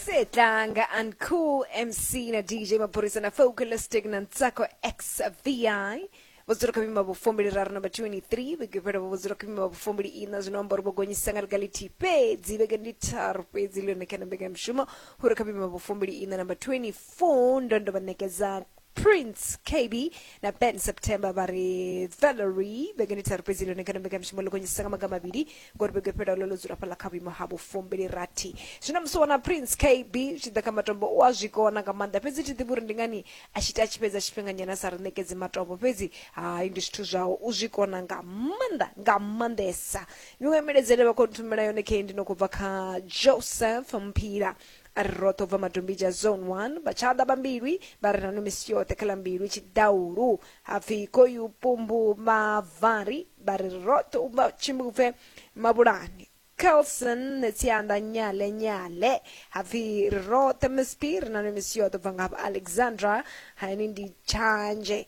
Setlanga and Cool MC na DJ Maphorisa na Focalistic na Ntsako XVI vhudzulo kha mima vhufumbili raru namba 23 vhege fhela vhudzulo kha mima vhufumbili ina zwino amba uri vho gonyisa nga ḽiga ḽithihi fhedzi vhege ndi tharu fhedzi ḽone kha na mbekanyamushumo hure kha mima vhufumbili ina namba 24 ndo ndo vha ṋekedza prince kb na ben september vha ri valery vhengeni tharu fhedzi ḽone kana mbekanyamushumo ḽo gonyisisa nga maga mavhili ngori vhege fhela ḽo ḽo dzula fhaḽa kha vhuimo ha vhufumbili rathi zwino musi wana prince kb tshi ḓa kha matombo u a zwi kona nga maanḓa fhedzi thi ḓivhi uri ndi ngani a tshi ita a tshi fhedza tshifhinganyana a sa ri ṋekedzi matombo fhedzi hai ndi zwithu zwawe u zwi kona nga maanḓa nga maanḓesa miṅwe miledzele vha khou nthumela yone khe ndi no khou bva kha joseph mphila A ri roṱhe u bva Madombidzha Zone One, vha tshaḓa vha Mbilwi vha re na no misi yoṱhe kha ḽa Mbilwi Tshidaulu ha pfi Koyu Pumbu vha Vari vha ri roṱhe u bva Tshimbupfe Mabulani Kelson Tsianda Nyale Nyale ha pfi ri roṱhe Msp ri na no misi yoṱhe u bva ngafha Alexandra ha ini ndi Tshanje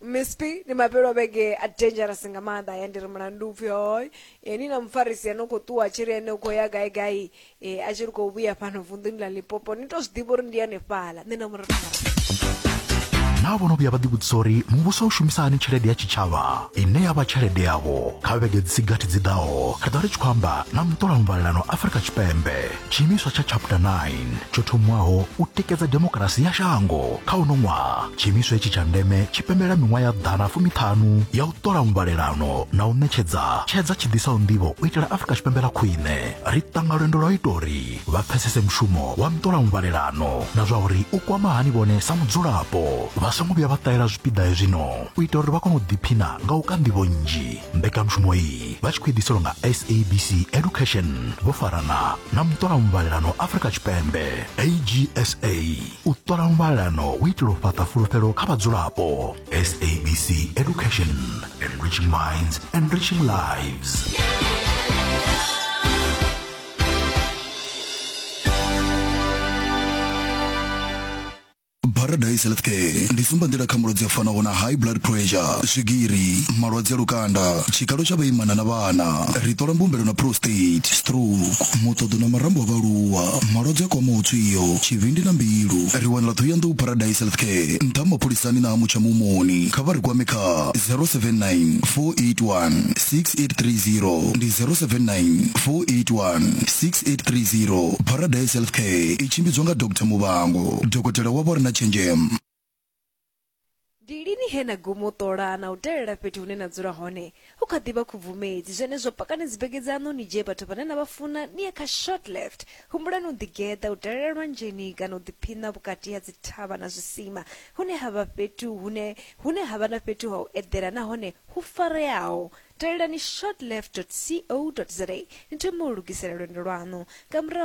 Miss P, ndi mafhelo a vhege a dangerous nga maanḓa ya ndi ri mulandu upfhi hoi e ni na mufarisi ano khou ṱuwa tshi ri ene u khou ya gai gai e, a tshi ri khou vhuya fhano vunḓuni ḽa lipopo ni tou zwi ḓivha uri ndi hanefhala nṋe na murathu naa vho no vhuya vha ḓivhudzisa uri muvhuso u shumisa hani tshelede ya tshitshavha ine ya vha tshelede yavho kha vhege dzi si gathi dzi ḓaho ri ḓo ri tshi khou amba na muṱolamuvhalelano afrika tshipembe tshiimiswa tsha chapter 9 tsho thomwaho u tikedza demokarasi ya shango kha uno ṅwaha tshiimiswa itshi tsha ndeme tshi pembelela miṅwaha ya ḓana fumiṱhanu ya u ṱola muvhalelano na u ṋetshedza tshedza tshi ḓisaho nḓivho u itela afurika tshipembe ḽa khwine ri ṱanga lwendo lwa u ita uri vha pfesese mushumo wa muṱola muvhalelano na zwa uri u kwama hani vhone sa mudzulapo vha songo vhuya vha ṱahela zwipiḓa hezwino u ita uri vha kone u ḓiphina nga u ka nḓivho nnzhi mbekanyamushumo iyi vha tshi khou idiselwa nga sabc education vho farana na muṱola muvhalelano afrika tshipembe agsa u ṱola muvhalelano u itela u fhaṱa fulufhelo kha vhadzulapo sabc education enriching minds enriching lives Paradise Healthcare ndi tsumbanḓila kha malwadze a fanaho na high blood pressure, swigiri, malwadze a lukanda, tshikalo tsha vhaimana na vhana. Ri ṱola mbumbelo na prostate, stroke, muṱoḓo na marambo a vhaaluwa, malwadze a kwamaho tswio, tshivhindi na mbilu. Ri wanala Ṱhohoyanḓou Paradise Healthcare, nṱha ha mapholisani na ha Mutsha Muhumoni. Kha vha ri kwame kha 079 481 6830 ndi 079 481 6830. Paradise Healthcare i tshimbidzwa nga Doctor Muvhango. dokotela wa vho re na tshenzhemo ndi lini he na guma u ṱola na u dalela fhethu hune na dzula hone hu kha ḓivha khubvumedzi zwenezwo pakani dzibege dzaṋu ni dzhie vhathu vhane na vha funa ni ye kha short left humbulani u ḓigeḓa u dalela lwanzheni kana u ḓiphiṋa vhukati ha dzithavha na zwisima hune ha vha fhethu hune hune ha vha na fhethu ha u eḓela nahone hu fareaho dalelani shortleft co za ni thome u lugisela lwendo lwaṋu nga murahu